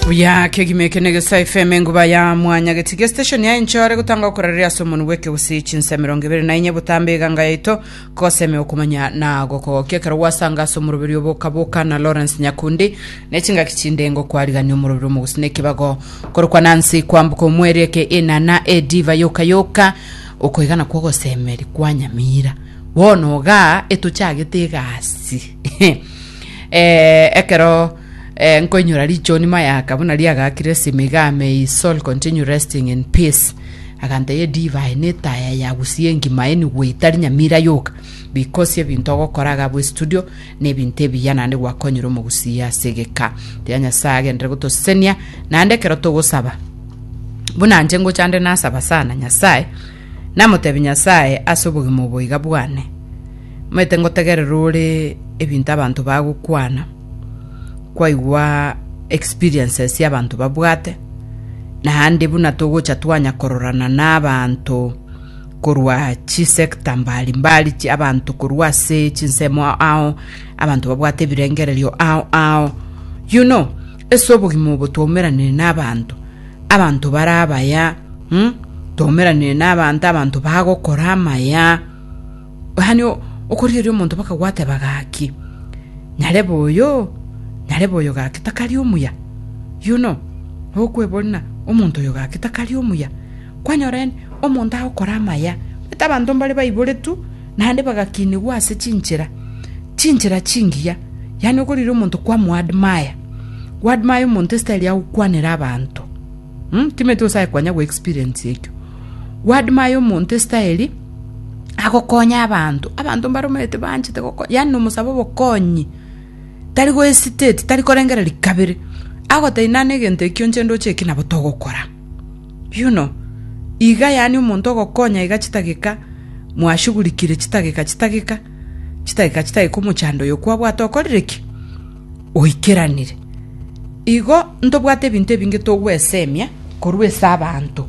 buya kegima eke na egesae fm enguba ya mwanya getiga estation ya enchore gotanga okorereria ase omonu bweke gose chinsa mirongo ibere na inye botambe eganga yaito koseme okomanya na gokogokia ekero gwasanga ase omoroberi obokaboka na lawrence nyakundi na echingaki chinde ngokwarigania omoroberi omogusi na ekibago korokwa nansi kwambuka omweri eke enana ediva yoka yoka okoigana kwa ogosemeri kwa nyamira bono igaa etochagete egasi Eh, ekero eh, nkoinyora richoni mayaka buna riagakire simiga may his soul continue resting in peace aganteye divai netaya yagusie engima eni gwetari nyamira yoka because ebinto ogokora gabo estudio nebinto ebiya nande gwakonyire omogusia asegeka tia nyasaye agendere gotosenia nande ekero togosaba buna nche ngochande nasaba sana nyasaye namotebie Nyasae ase obogima obo iga bwane, Moete ngotegerera ore ebinto abanto bagokwana, kwaigwa experiences abanto babwate, naende buna togocha twanya kororana n'abanto korwa chisector mbari mbari chi abanto korwa ase chinsemo ao, abanto babwate ebirengererio ao ao, you know. Ase obogima obo twaumeranire n'abanto, abanto bare abaya, twaumeranire n'abanto, abanto bagokora amaya, yaani okorigereria omonto mpaka gwateba gaki, nyarebe oyo, nyarebe oyo gaki takari omuya, you know, okwebori ng'a omonto oyo gaki takari omuya. kwanyorene omonto agokora amaya, omanyete abanto mbare baiboretwe naende bagakinigwa ase chinchera chinchera chingiya, yaani okorira omonto kwamoadmire, oadmire omonto estyle ya gokwanera abanto um timanyete gose aye kwanya goexperience ekio, oadmire omonto estyle agokonya abanto, abanto mbare omanyete banchete goko yaani nomosabe obokonyi, tari gohesitate tari korengereria kabere, agotebi nane egento ekio inche ndoche eki nabo togokora. Yuno, iga yaani omonto ogokonya iga chitageka mwashugurikire chitageka chitageka, chitageka chitageka omochando oyo kwabwate okorire ki? Oikeranire. Igo ntobwate ebinto ebinge togwesemia korwa ase abanto.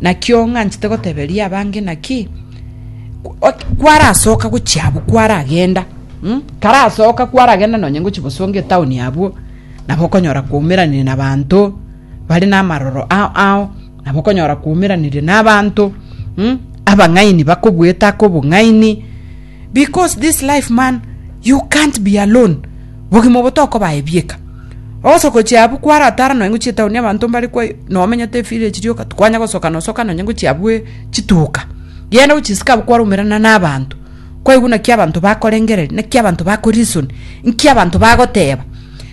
Nakio ng'anchete goteberia abange naki ot- kwarasoka gochia abwo kwaragenda mm? karasoka kwaragenda nonye ngochia bosonga etown abwo nabo okonyora kwaumeranire na abanto bare namaroro ao ao nabo okonyora kwaumeranirie nabanto mm? abang'aini bakobwete ake obong'aini because this life man you can't be alone bogima obo tokobae bieka ogosoko chiabu kwaratara nonya ngochie etaoni abanto mbare kwa nomenyete village rioka tikwanya gosoka nosoka nonya ngochia abwe chituka genda gochia isiko abwo kwaraumerana nabanto Kwaigwa naki abanto bakorengereria, naki abanto bakorisoni, nki abanto bagoteba,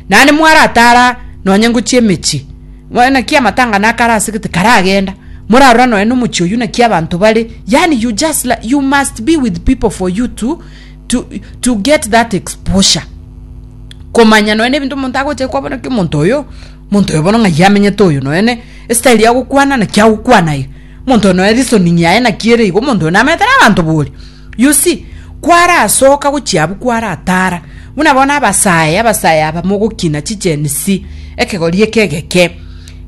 naende mwaratara nonye ngochia emechie, bono naki amatang'ana aka ara ase gete karagenda, morarora nonye na omochie oyio naki abanto bare, yaani you just li- you must be with people for you to, to, to get that exposure komanya nonye na ebinto omonto agocha koba bono ki omonto oyo, omonto oyo bono ng'ai amenyete oyo nonye na estyle ya gokwana naki agokwana iga. Monto one oye reasoning yaye naki ere igo monto one amenyete na abanto bori you see kwarasoka gochia abwo kwaratara buna bono abasae abasae aba mogokina chi gen z ekegori eke egeke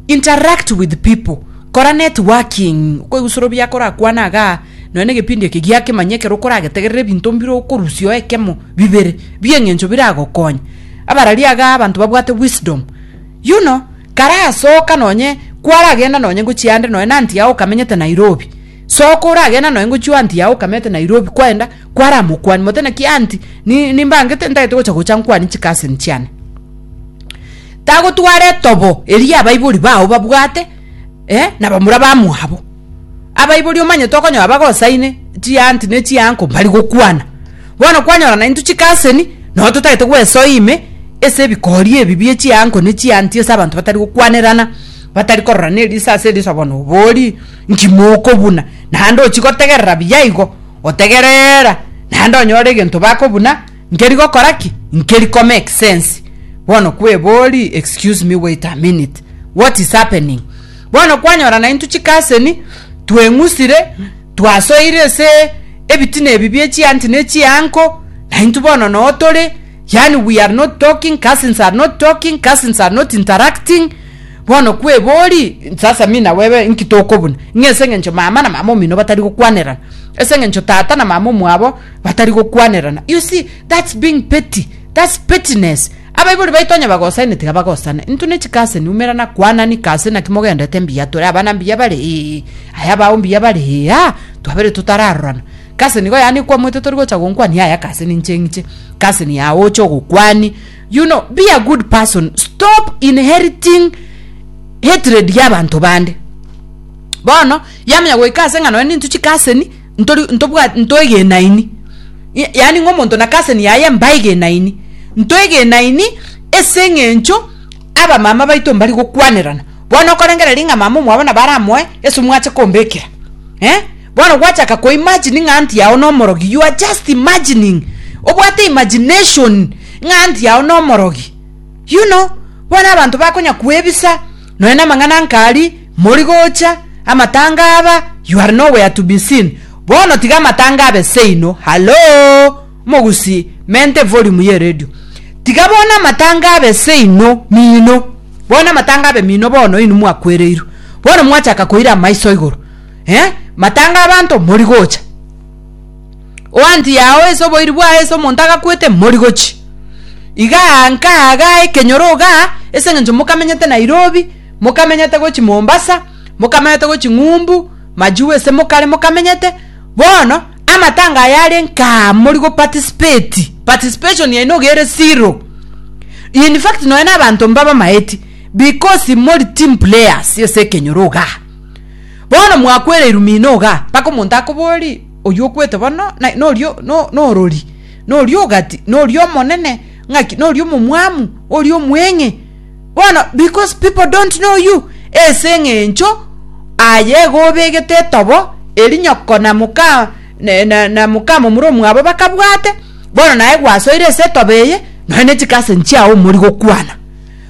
interact with people kora networking okoigusora obuya akorakwane igaa nonya na egepindi eke giakemanya ekero okoragetegerera ebinto mbire okorusia oe ekemo bibere bi eng'encho biragokonya abarari igaa abanto babwate wisdom you know. Karasoka nonye kwaragenda nonye ngochia ande nonya na anti yao okamenyete Nairobi. Soka oragenda nonye ngochio anti yao okamete Nairobi kwaenda kwaramokwanie mote naki anti ni nimbangete ntagete gocha gocha nkwanie chikasini chiane. Tagotwara etobo eria abaibori bao babwate eh nabamura bamwabo. abaibori omanyete okonyora bagosaine chianti ne chianko mbari gokwana. Bono kwanyora naintwe chikaseni, nonya totagete gwesoa ime ase ebikori ebi bie chianko ne chianti ase abanto batari gokwanerana, batari kororana eriso ase eriso bono obori nki mokobuna. Naende ochi gotegerera buya igo, otegereera naende onyore egento bakobuna nkeri gokora ki? Nkeri ko make sense. Bono kwebori excuse me wait a minute, what is happening? Bono kwanyora naintwe chikaseni, tweng'usire, twasoeire ase ebitina ebi bie chianti ne chianko, naintwe bono noo tore, yaani we are not talking, cousins are not talking, cousins are not interacting, bono kwebori, sasa mi na webe inki tokobuna? Ng'a ase eng'encho mama na mama omino batari gokwanerana, ase eng'encho tata na mama omwabo batari gokwanerana. You see, that's being petty, that's pettiness. Abaibori baito onye bagosane tiga bagosane intwe ne chikase niumera na kwana niki ase naki mogendete mbuya tore abana mbuya bare ee aya bao mbuya bare ee aa twabere totararorana kase nigo yaani ekwamwete tori gocha gonkwania aya kase ninche ng'iche kase ni aa oche ogokwani you know be a good person stop inheriting hatred ya abanto bande bono yamenya goika ase eng'ano ende intwe chikaseni. ntori ntobwat ntoegenaini, y yaani ng'a omonto na cousin yaye mbaegenaini, ntoegenaini ase eng'encho abamama baito mbari gokwanerana. Bono okorengereria ng'a mama omwabo nabo aramoe ase omwache kombekera eh, bono gwachaka ko imagine ng'a aunty yago nomorogi, you are just imagining, obwate imagination ng'a aunty yago nomorogi, you know, bono abanto bakonya koebisa. Nonya namang'ana nkari, mori gocha, amatanga aba, you are nowhere to be seen. Bono tiga amatanga abe seino. Hallo! Omogusi, mente evolume ye radio. Tiga bono amatanga abe seino, mino. Bono amatanga abe mino bono inwe mwakwereirwe. Bono mwachaka koira amaiso igoro. Eh? Matanga abanto mori gocha. Oanti yao ase oboiri bwao ase omonto agakwete, morigochie. Iga nkaga ekenyoro iga ase engencho mokamenyete Nairobi, mokamenyete gochia Mombasa, mokamenyete gochia Ng'umbu, Majiu ase mokare mokamenyete, bono amatanga aya aria nkaa mori go participate, participation yaino iga ere zero. In fact nonya na abanto mbabamaeti because mori team players ase ekenyoro igaa. Bono mwakwereirwe mino iga, mpaka omonto akobori, Oyio okwete bono norio norori, norio ogati, norio omonene, ng'aki norio omomwamu, oria omweng'e. Bono because people don't know you, ase eng'encho aye igo obegete etobo eri nyoko na moka na, na, na moka momura omwabo bakabwate, bono naye gwasoire ase etobo eye, nonya ne chicousin chiao omori gokwana.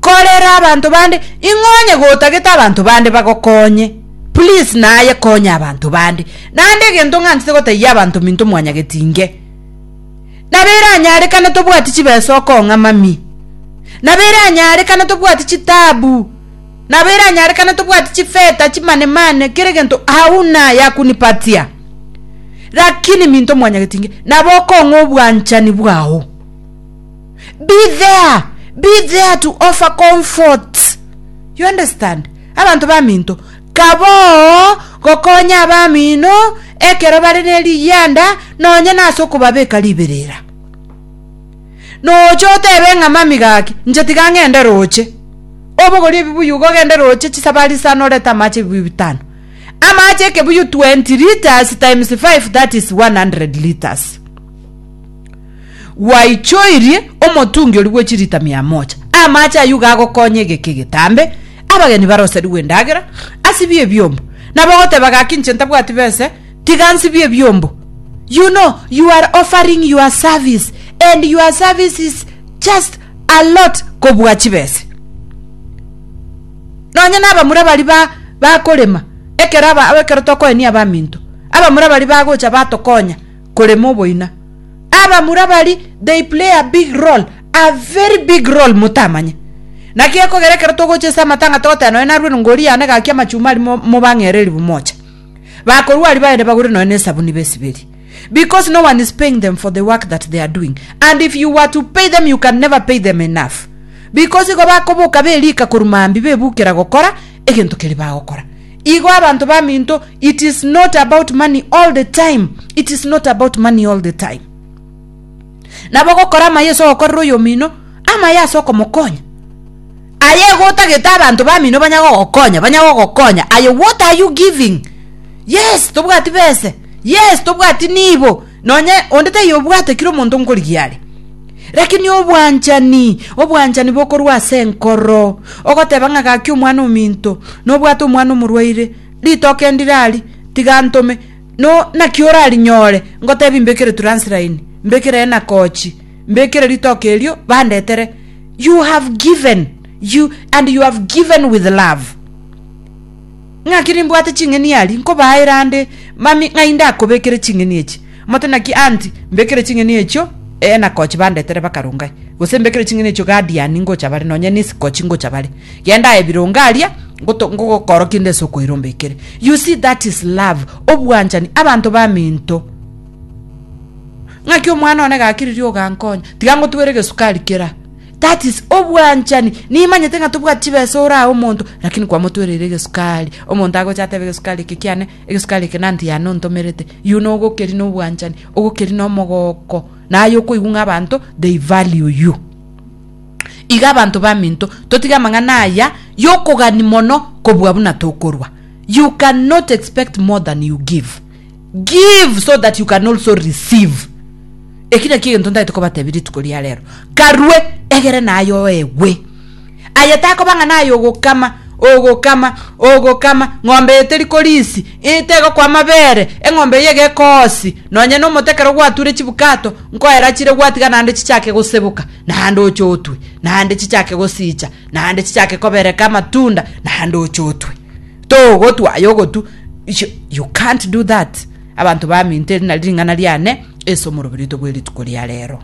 korera abanto bande ing'o onye gotagete abanto bande bagokonye please naye konya abanto bande naende egento ng'antete gotaiya abanto minto mwanyagetinge nabo eranyarekane tobwati chibesa okong'a mami nabo eranyarekane tobwati chitabu nabo eranyarekane tobwati chifeta chimanemane kere gento hauna yakunipatia lakini minto mwanyagetinge nabo okong'a obwanchani bwao be there be there to offer comfort you understand abanto baminto kaboo gokonya abamino ekero bare neriyanda nonye nase okobabeka riberera nocha otebe ng'a mami gaki inche tiga ng'ende roche obogorie ebibuyu igo ogende roche chisabari sa norete amache ebibuyu bitano amache ekebuyu 20 litres times 5 that is 100 litres. Gwaichoirie omotungi oria bwe chilita mia moja. Amache ayio gagokonya egeka egetambe, abageni baroserigwe endagera, asibie ebiombo. Nabo ogoteba, Gaki inche ntabwati bese, tiga nsibie ebiombo. You know, you are offering your service, and your service is just a lot kobua chibese. Nonye n'abamura bari ba bakorema, ekero aba ekero tokoenia abaminto, abamura bari bagocha batokonya, korema oboina. Abamura bari they play a big role, a very big role motamanye. Naki ekogera ekero togocha ase amatanga togoteba nonya narue rongori yane gaki amachuma ari mo- mobang'ere ribu mocha. Bakorua aria baende bagure nonya na esabuni besiberi. Because no one is paying them for the work that they are doing. And if you were to pay them you can never pay them enough. Because igo bakoboka berika korwa maambia bebukera gokora egento keria bagokora. Igo abanto baminto it is not about money all the time it is not about money all the time nabo gokora amaye ase ogokorera oyomino amaye ase okomokonya aye gotagete abanto bamino banya gogokonya banya gogokonya aye what are you giving yes tobwati bese yes tobwati nibo Nonye onde taiyo obwate kira omonto nkorigia are. Rakini obwanchani, obwanchani bokorwa ase enkoro, ogoteba ng'a gaki omwana ominto, nobwate omwana omorwaire, ritoke ndire ari, tiga ntome, no, naki orarinyore, ngotebi mbekere turansilaini, mbekere enakochi, mbekere ritoke erio, bandetere. You have given, you, and you have given with love. Naki nimbwate ching'eni aria nkobaa erande, mami, ng'ai ndakobekere ching'eni echi? Omonto naki anti, Mbekere ching'eni echio Eenakochi bandetere bakarongae, gose mbekere ching'eni echio Gadiani ngocha bare, nonya Nisikochi ngocha bare. Genda aye bironge aria, ngoto- ngogokora kende ase okoira ombekere. You see, that is love, obwanchani, abanto baminto. Ng'aki omwana one gakiririe ogankonya, tiga ngotwere egesukari kera. That is obwanchani. Nimanyete ng'a tobwati chibesa ore aye omonto, lakini kwamotwereire egesukari. Omonto agocha atebe egesukari eke kiane, egesukari eke nanti yane ontomerete. You know ogokeri na obwanchani, ogokeri na omogoko. Naye okoigwa ng'a abanto they value you. Iga abanto baminto, totige amang'ana aya yokogani mono kobua buna tokorwa. You can not expect more than you give. Give so that you can also receive. Eki nakio egento ntagete kobatebia rituko ria rero. Karue, egere nayo egwe. Aye takoba ng'a naye ogokama, ogokama, ogokama, ng'ombe eye teri korisi, ii tegokwa amabere, eng'ombe eye iga ekoosi, nonye na omote ekero gwature chibukato, nkoera achire gwatiga naende chichake goseboka, naende oche otwe, naende chichake gosiicha, naende chichake kobereka amatunda, naende oche otwe. togotwa aye ogotu you, you can't do that abanto baminto eri nari ring'ana riane ase omoroberi oito bwe rituko ria rero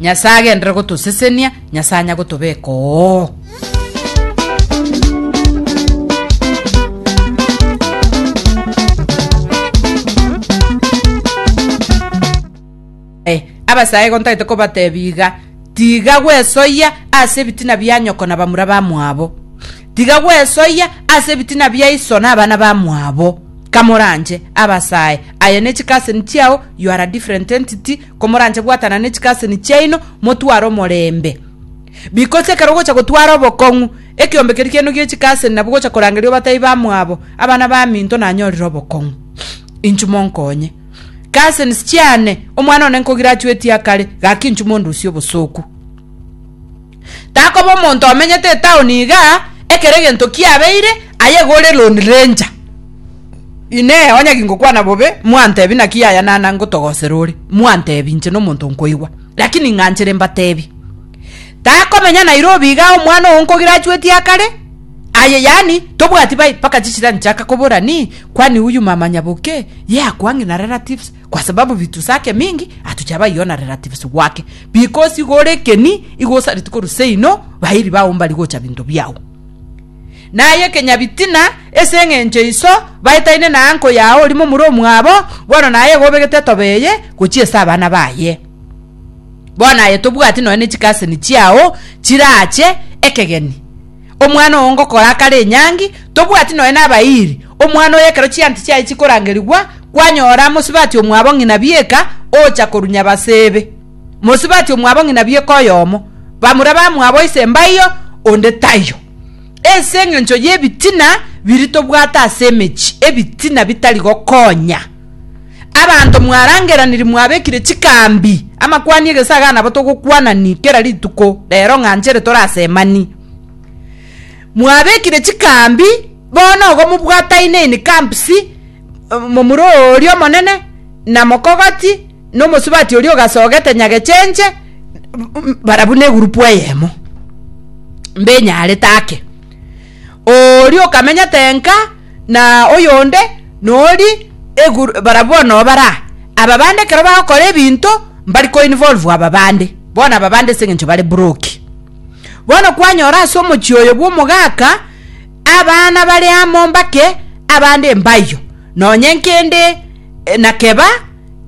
nyasaye agendere gotosesenia nyasaye anya gotobeka oo Ee, abasaaigo ntagete kobateebia iga, tiga gwesoyia ase ebitina bia nyoko na bamura bamwabo, tiga gwesoyia ase ebitina bia iso na abana bamwabo. Kamoranche abasaae aye ne chikaseni chiao, you are a different entity, komoranche bwatana ne chikaseni chiaino, motware omorembe. Because ekero ogocha gotwara obokong'u, ekeombe keria kiaino gie chikaseni nabwo ogocha korangeria obateebie bamwabo, abana baminto nanyorire obokong'u. Inchuo monkonye. Cousins chiane, omwana one nkogirachuetie akare, gaki inchu mondusie obosooku. Takoba omonto omenyete etaoni iga, ekero egento kiabeire, aye gore Lone Ranger. Inee, onye gingokwana bobe, mwantebi naki yaya nana ngotogosera ore, mwantebi inche nomonto nkoigwa. Lakini ng'anchere mbatebi. Takomenya Nairobi iga omwana oo nkogirachuetie akare, Aye yaani tobwati bai mpaka chisira nchaka kobora ni kwani huyu mama nyaboke ye akwangi na relatives kwa sababu vitu sake mingi atuchaba iyo na relatives wake because igo ore keni igo osariti koru seino bairi bao mbari gocha binto biao naye kenyabitina ese eng'encho iso baetaine na anko yao orimo mure omwabo bono naye igo obegete tobeye gochia ase abana baye bono aye tobwati noe ne chikaseni chiao chirache ekegeni Omwana oo ngokora akare enyangi, tobwati nonya nabairi, omwana oyo ekero chianti chiaye chikorangerigwa, kwanyora mosibati omwabo ng'ina bieka ocha korunya baseebe. Mosibati omwabo ng'ina bieka oyomo, bamura bamwabo ise mbaiyo, onde taiyo. Ase engencho y'ebitina biria tobwate ase emechie, ebitina bitari gokonya. Abanto mwarangeraniri mwabekire chikambi, amakwani egesaga nabo togokwanani kera rituko rero ng'a nchere tore asemani. Mwabekire chikambi, bono igo mobwataine in camps, momura oria omonene, na mokogoti, na omosubati oria ogasogete nyagechenche, bara buna egurupu eyemo. Mbenyarete ake. Oria okamenyete enka na oyonde nori eguru barabwo bono obara aba bande ekero bagokora ebinto mbari ko involve aba bande bono aba bande ase eng'encho bare broke bono kwanyora ase omochie oyo bwa omogaka abana bare amo mbake abande mbayo nonye nkende eh, nakeba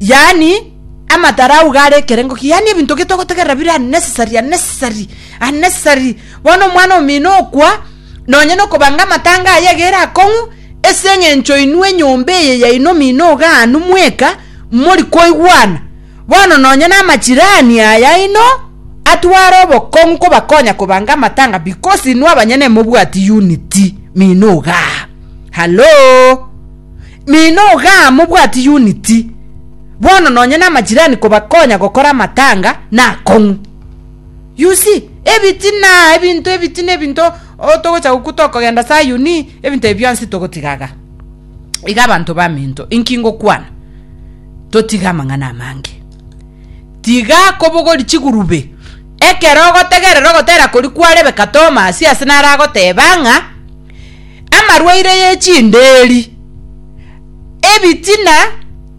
yani amatara auga are ekerengo ki yani ebinto getogotegerera bire unnecessary unnecessary unnecessary Bono omwana omino okwa, nonya nokobanga amatanga aye egere akong'u, ase engencho inwe enyomba eye yaino omino ogaanu mweka mori koigwana. Bono nonya namachirani ayaino atware obokong'u kobakonya kobanga amatanga because inwe abanyene mobwati unity mino ogaa. Hallo? Mino ogaa mobwati unity. Bono nonya namachirani kobakonya gokora amatanga nakong'u. You see, ebiti na ebinto, ebiti na ebinto oh, togocha gokwa tokogenda Sayuni, ebinto ebi bionsi togotigaga. Iga abanto baminto, inki ngokwana? Totiga amang'ana amange. Tiga kobogori chigurube. Ekero ogotegerera ogotera kori kwa Rebeka Tomasi ase naragoteba ng'a amarwaire ye chinderi ebitina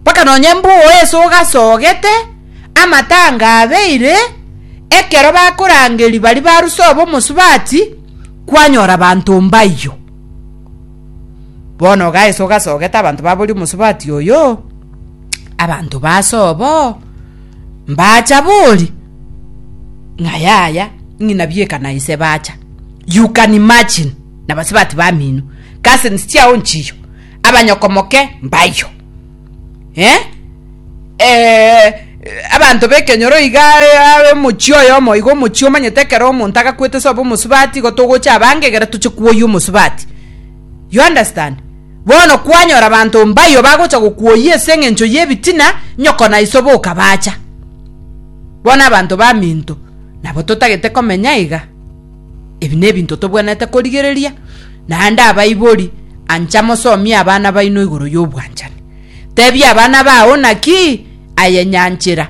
mpaka nonye mbwogo ase ogasogete, amatanga abeire, ekero bakorangeria baria baruse obo omosubati, kwanyora abanto mbayio. Bono iga ase ogasogete abanto baboria omosubati oyo, abanto base obo mbacha bori, ng'a yaya, ng'ina bieka na ise bacha. You can imagine, nabasubati bamino, cousins chiao nchiyo. abanyokomoke mbayio. Eh, eh, abanto b'ekenyoro iga are omochie oyomo iga omochie omanyete ekero omonto agakwete sobe omosubati igo togocha abange egere toche kwoyia omosubati. You understand? Bono kwanyora abanto mbayio bagocha gokwoyia ase eng'encho y'ebitina, nyoko na iso boka bacha. Bono abanto baminto nabo totagete komenya iga. Ebi nebinto tobwenerete korigereria, naende abaibori, ancha mosomie abana baino igoro y'obwanchani. Tebia abana bao naki ayenyanchera.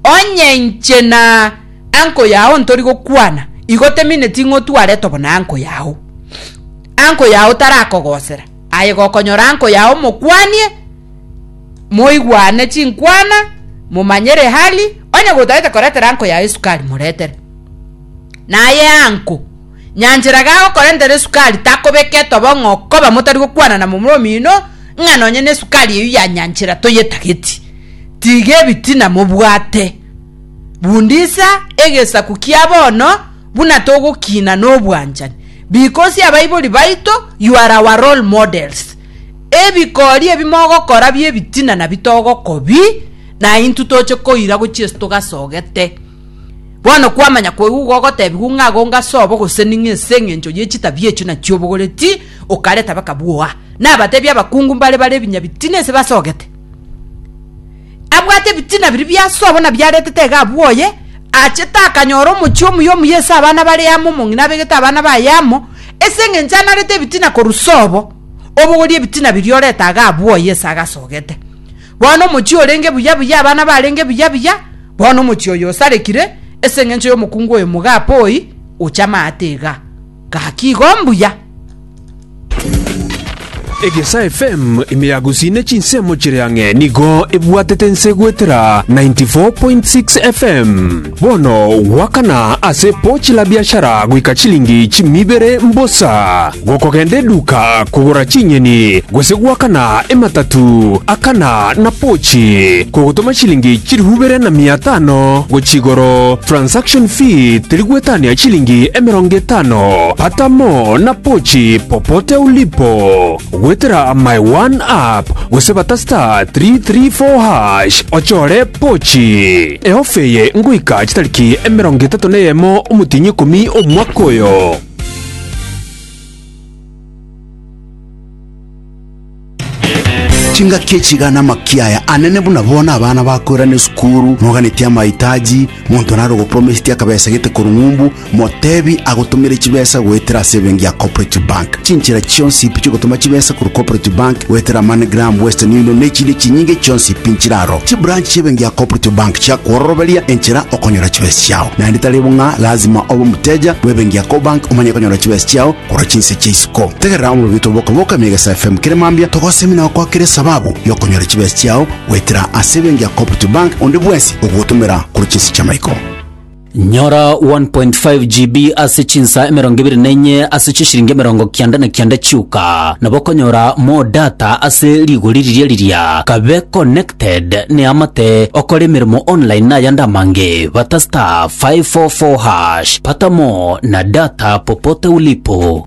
Onye inche na anko yao ntori gokwana, igo temineti ng'o tware tobo na anko yao. Anko yao tarakogosera, aye gokonyora anko yao mokwanie, moigwane chinkwana, momanyere hali, onye gotaete koretera anko yao esukari moretere. Naye anko, nyanchera gagokorentera esukari takobeka etobo ng'a okoba motari gokwana na momura omino ng'a nonye nesukari eyio ya nyanchera toyetageti. Tiga ebitina mobwate. Bundisa egesaku kia bono buna togokina nobwanchani. Bikosi abaibori baito, you are our role models. Ebikori ebi mogokora biebitina nabi togokobi, naintwe toche koira gochia ase togasogete. Bono kwamanya koigwa gogotebiwa ng'a agonge ase obo gose ning'e ase engencho ye chitabi echio nachio obogoreti okareta bakabwoa. Nabatebi abakungu mbare bare ebinya bitina ase basogete. Abwate ebitina biria bia ase obo na biaretete iga abwoye, achete akanyora omochie omuya omuya ase abana bare amo omong'ina abegete abana baye amo ase engencho anarete ebitina korwa sobo obogorie ebitina biria oreta iga abwoye ase agasogete. Bono omochie orenge buya buya, abana barenge buya buya, bono omochie oyo osarekire ase engencho y'omokungu oyo mogapooi oche amaate iga. Gaki igo mbuya. Egesa FM ime ya Gusii ne chinsemo chire ang'e nigo ebwatete ense goetera 94.6 FM. Bono goakana ase pochi la biashara goika chilingi chimibere mbosa, gokogenda eduka kogora chinyeni, gose goakana ematatu akana na pochi, kogotoma chilingi chilifu ibere na mia etano gochia igoro, transaction fee teri gwetania chilingi emerongo etano, pata mo na pochi popote ulipo, goetera my one app gose bata star 334 hash ochore pochi. Ehofa eye ngoika chitariki emerongo etato na eyemo omotienyi ikomi omwaka oyo. chingaki echiga na amaki aya anene buna bono abana bakoirana esukuru noganetie amaitaji monto nare ogoporomesetie akabesa gete korwa ng'umbu Motebi agotomere chibesa goetera ase ebenki ya Cooperative Bank. Chinchera chionsi pi chiogotoma chibesa korwa Cooperative Bank goetera MoneyGram, Western Union na echinde chinyinge chionsi pi nchire aro. Chibranch chi'ebenki ya Cooperative Bank chiakwororoberia enchera okonyora chibesa chiao. Naende tari bo ng'a lazima obe omoteja bw'ebenki ya Cobank omanye konyora chibesa chiao korwa chinse chia isiko. Tegerera omorobito bw'okoboka ime Egesae FM kere mambia togosemi na gokwakera esababu y'okonyora chibesa chiao goetera ase ebenki ya Cooperative Bank onde bwensi ogogotomera korwa chinse chi'amaiko. Nyora 1.5 GB ase chinsa emerongo ebere na enye ase chishiringi emerongo kianda na kianda chiuka. Nabo okonyora more data ase rigori riria riria. Kabe connected neamate okore emeremo online nayande amange. Bata star 544 hash. Pata more na data popote ulipo.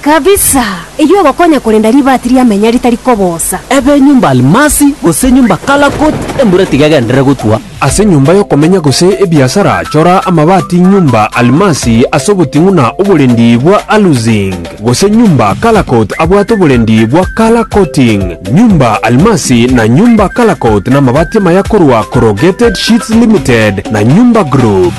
Kabisa! Eyio egokonya korenda ribaati ria menya ritari kobosa. Ebe enyomba almasi, gose enyomba kalakut, embura tiga egenderere gotwa. Ase enyomba y'okomenya gose ebiasara, chora amabaati nyomba almasi ase oboting'u na oborendi bwa aluzinc, gose nyomba kalakut abwate oborendi bwa color coating. Nyomba almasi na nyomba kalakut namabaati amaya korwa Corrugated Sheets Limited na Nyomba Group.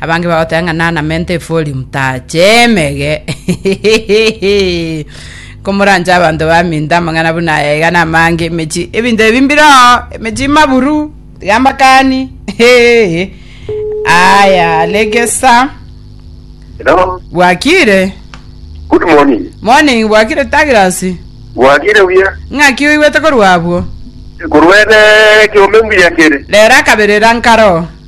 Abange bagoteba ng'a nanamente efori motaache emege. Komoranche abanto baminto amang'ana buna aya iga namange emechi ebinto ebi mbire oo emechi maburu tiga mbakani Hehe. aya legesa Hello. bwakire Good morning. morning bwakire tagirasi Bwagire buya. ng'aki oigwete korwa abwo Kurwene kiume mbuya kere. rero akaberera nkaro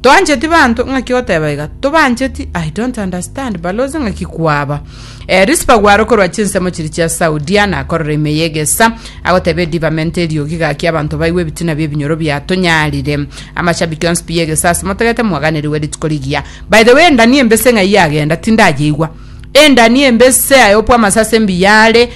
Toancheti banto ng'aki oteba iga, tobancheti, I don't understand balozi ng'aki kwaba. Eh, Rispa gwaro korwa chinsemo chiri chia Saudia nakorora ime y'egesa, agoteba edibamenta eriogi gaki abanto baigwe ebitina bi'ebinyoro biatonyarire. Amashabiki onsi pi y'egesa ase motagete mwaganerigwe rituko rigiya. By the way, endani embese ng'ai yagenda, tindayeigwa. Endani embese aye opwa amasase mbiya are,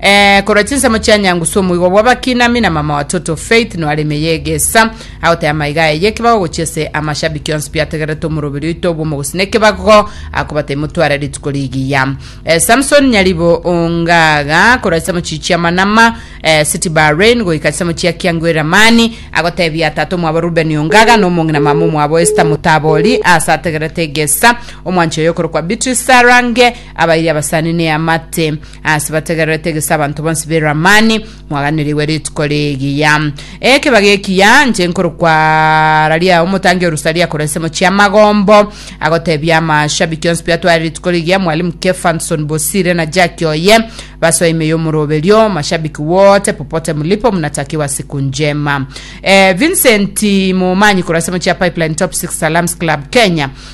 Eh, korwa chinsemo chia nyangu ase omoigwa bw'abakinami na mama watoto Faith nware ime yegesa agoteba amaiga aye y'ekebago gochia ase amashabiki onsi biategerete omoroberi oito bw'omogusi n'ekebago akobata imotware rituko rigiya Eh, Samson Nyaribo Ongaga korwa chinsemo chiyi chia Manama eh, City Bahrain goika chinsemo chia Kiangu Eramani agotebia tata omwabo Ruben Ongaga na omong'i na mama omwabo Esther Mutabori ase ategerete egesa omwanchi oyo okorokwa Beatrice Sarange abairie abasani neamate Ase bategererete gese abanto bonsi be Lamani, mwaganerigwe rituko rigiya. Ekebago ekiya inche nkorokwa Araria omotangi o Rusaria korwa ensemo chi'amagombo, agotebia amashabiki onsi biatware rituko rigiya, Mwalimu Kefanson Bosire na Jackie oye, basoe ime y'omoroberio, mashabiki wote popote mulipo mnatakiwa siku njema. Eh, Vincent Momanyi korwa ensemo chia Pipeline Top 6 Salams Club Kenya,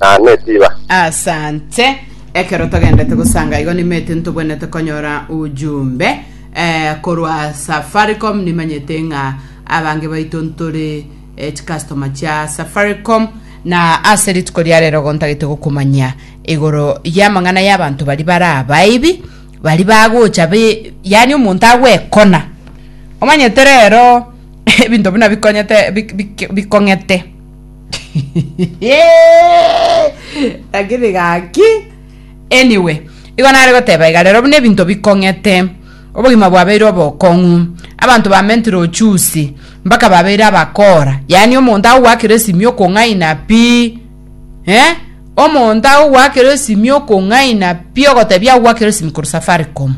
na netiba. Asante. Ekero togendete gosanga igo nimete ntobwenete konyora ujumbe eh, korwa Safaricom nimanyete ng'a abange baito ntore eh, chikastoma chia Safaricom na ase rituko ria rero gontagete gokumanyia igoro y'amang'ana y'abanto bari bara abaibi bari bagocha be yani omonto agwekona omanyete rero ebinto buna bikonyete bik- bik- bikong'ete lakini gaki anyway igo nare goteba iga rero buna ebinto bikong'ete obogima bwabeire obokong'u abanto bamentire ochusi mpaka babeire abakora yaani omonto agogoakera esimia okong'aina pi eh omonto agogoakera esimia okong'aina pi ogotebia agogoakera esimia korwa safaricom.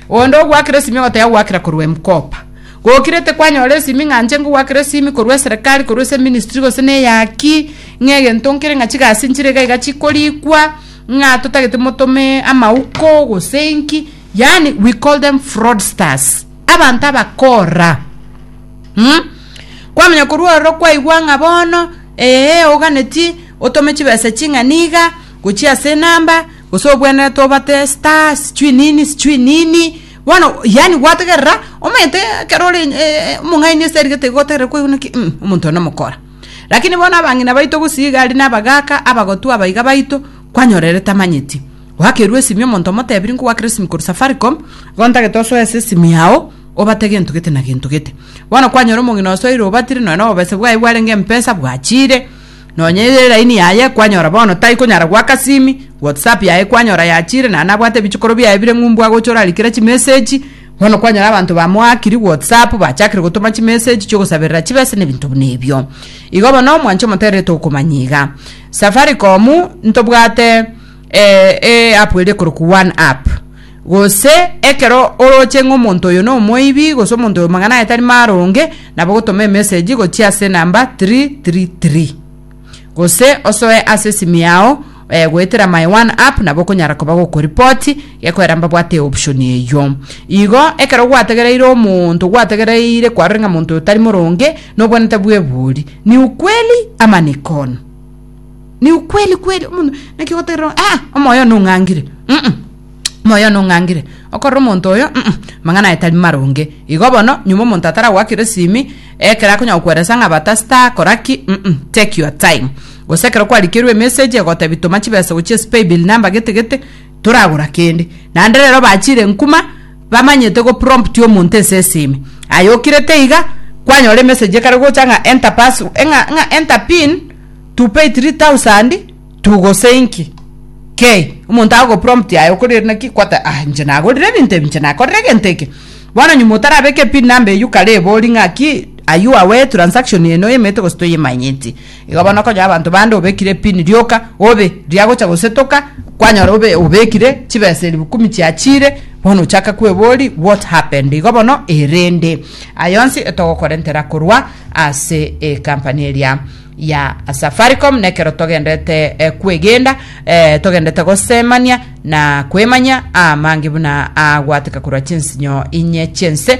Onde ogwakire esimi ogoteba gwakira korwa emkopa. Gokire tekwanyora esimi ng'a nche ngogwakera esimi korwa eserekari korwa ase eministry gose na eyaki ng'a egento nkere ng'a chigasi nchire iga iga chikorikwa ng'a totagete motome amauko gose inki yaani we call them fraudsters abanto abakora mm? kwamanya korwa ororo kwaigwa ng'a bono eeh oganeti otome chibesa ching'a niga gochia ase enamba Gose obwenerete obate star sijui nini sijui nini bono yani gwategerera omanyete ekero ore eh, omong'aini ase erigete igo otegerera kwaigwa ki mm, omonto one omokora lakini bono abang'ina baito gose iga ari nabagaka abagotu abaiga baito kwanyorere tamanyeti gwakerwa esimi omonto omotebiri nkogwakera esimi korwa safaricom igo ntagete osoe ase esimi yao obate gento gete na gento gete bono kwanyora omong'ina osoire obatire nonya na obobese bwaye bwarenge mpesa bwachire Nonya eye line yaye kwanyora bono tai konyara goaka simi, WhatsApp yaye kwanyora yachire naende abwate ebichokoro biaye bire ng'u mbwa gocha orarikera chimessage, bono kwanyora abanto bamoakiri WhatsApp bachakire gotoma chimessage chiogosaberera chibesa na ebinto buna ebio. Igo bono omwanche omoterere tokomanya iga. Safaricom ntobwate. e app ere ekorokwa one app gose ekero oroche ng'a omonto oyo na omoibi gose omonto oyo mang'ana aye tari maronge nabo ogotoma emessage gochia ase enamba three three three gose osoe ase esimi yao eh, goetera my one app nabo okonyara koba gokoripoti gekoera mbabwate eoption eyio igo ekero gwategereire omonto gwategereire kwarore ng'a monto oyo tari moronge nobwenete bwa ebori ni ukweli ama ni kono ni ukweli kweli omonto naki goterera ah omoyo no ngangire mm -mm. moyo no ngangire okorora omonto oyo mm -mm. mang'ana aye tari maronge igo bono nyuma omonto atara gwakire simi ekera akonya gokweresa ng'a bata star koraki mm -mm. take your time gose ekero kwarikerwe message egotebi toma chibesa gochia spay bill number gete gete toragora kende nande rero bachire nkuma bamanyete go prompt omonto ense esime aye okirete iga kwanyora emessage ekare gocha ng'a enter pass ng'a ng'a enter pin to pay 3000 to gose inki kei omonto agogoprompt aye okorire naki kwata ah inche nagorire ebinto ebi inche nakorire egento eke bono nyuma otarabeke pin number eywo kare ebori ng'aki are you aware transaction eye noyemete gose toyemanyeti. Igo bono konya abanto bande obekire epini, rioka, obe, riagocha gosetoka, kwanyora obe, obekire chibesa elibukumi chiachiire, bono ochake kwebori what happened? Igo bono erende aye onsi etogokorentera korwa ase ecompany eria ya Safaricom, nekero togendete eh, kwegenda eh, togendete gosemania na kwemanya amange buna agwateka korwa chinsinyo inye chinse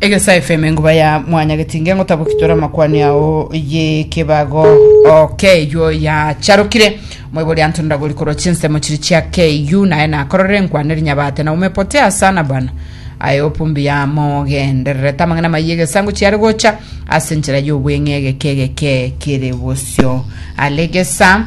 Egesa FM enguba ya mwanya getinge ngotaboki tore amakwani ao y'ekebago okeywo yacharokire moibori anto ndagori korwa chinsemo chiri chia KU naye nakororere nkwane rinyabate na umepote asana bana aye opumbi ya mogendererete amang'ana mayi egesango chiare gocha ase nchera y'obweng'e egeke egeke kere bosio alegesa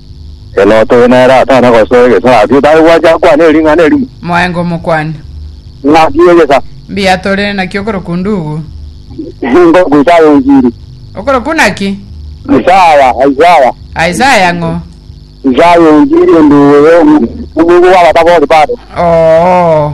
Ere otobe nere atana gosoa egesa gaki otare gwancha akwane ering'ana erimo. Moenga omokwani. Ng'aki egesa. Mbuya tore naki okorokwa Ndugu? Nkorokwa Isaya Onziri. Okorokwa naki? Isaya, Isaya. Isaya ng'o? Isaya Onziri Ondugu oyo omoigwa bw'abatabori babo. Oo.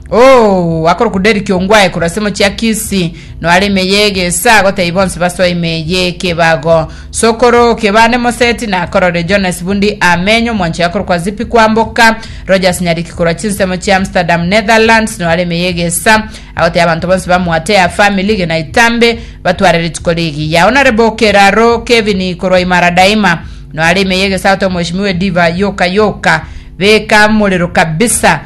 Oo, akorokwa Derrick Ongwae korwa ase emochie ya Kisii, no are ime ye egesa, agotebia bonsi basoe ime ye ekebago. Sokoro Kebande Moseti nakororire Jonas Bundi Ameny omwanchori akorokwa Zippy Kwamboka. Rogers Nyariki korwa chinsemo chia Amsterdam, Netherlands, no are ime ye egesa, agotebia abanto bonsi ba Mwate ya Family gena itambe batware rituko rigiya. Honorable Keraro Kevin korwa Imara Daima, no are ime ye egesa, agotebia Omweshimiwa Ediva Yoka Yoka, beka morero kabisa.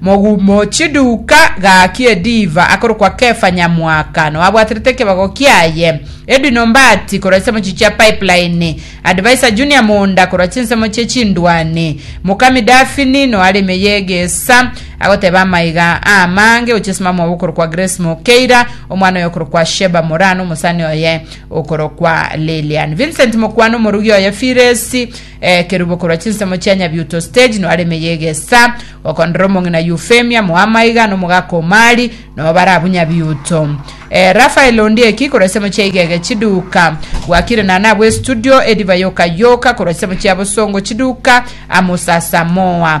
Mogumo chiduka gaki ediva akorokwa Kefa Nyamwaka nao abwaterete ekebago kiaye, Edwin Ombati korwa chisemo chichio chia Pipeline, Adviser Junior Munda korwa chinsemo chie chindwani, Mokami Daphne nao are ime y'egesa agoteba amaiga amange gochia ase mamwabo okorokwa Grace Mokeira, omwana oye okorokwa Sheba Moraa na omosani oye okorokwa Lilian. Vincent Mokwano, omorugi oye Firesi Ekerubo korwa chinsemo chia Nyabiuto Stage noare ime y'egesa, gokondera omong'ina Eufemia Moamaiga n'omogaka Omari nobo bare abwo Nyabiuto. Eh, Raphael Ondieki korwa ensemo chia Igege Chiduka, Bwakire Nana abwo Estudio, Edivai Okayoka korwa ensemo chia Bosongo Chiduka, Amos Asamoah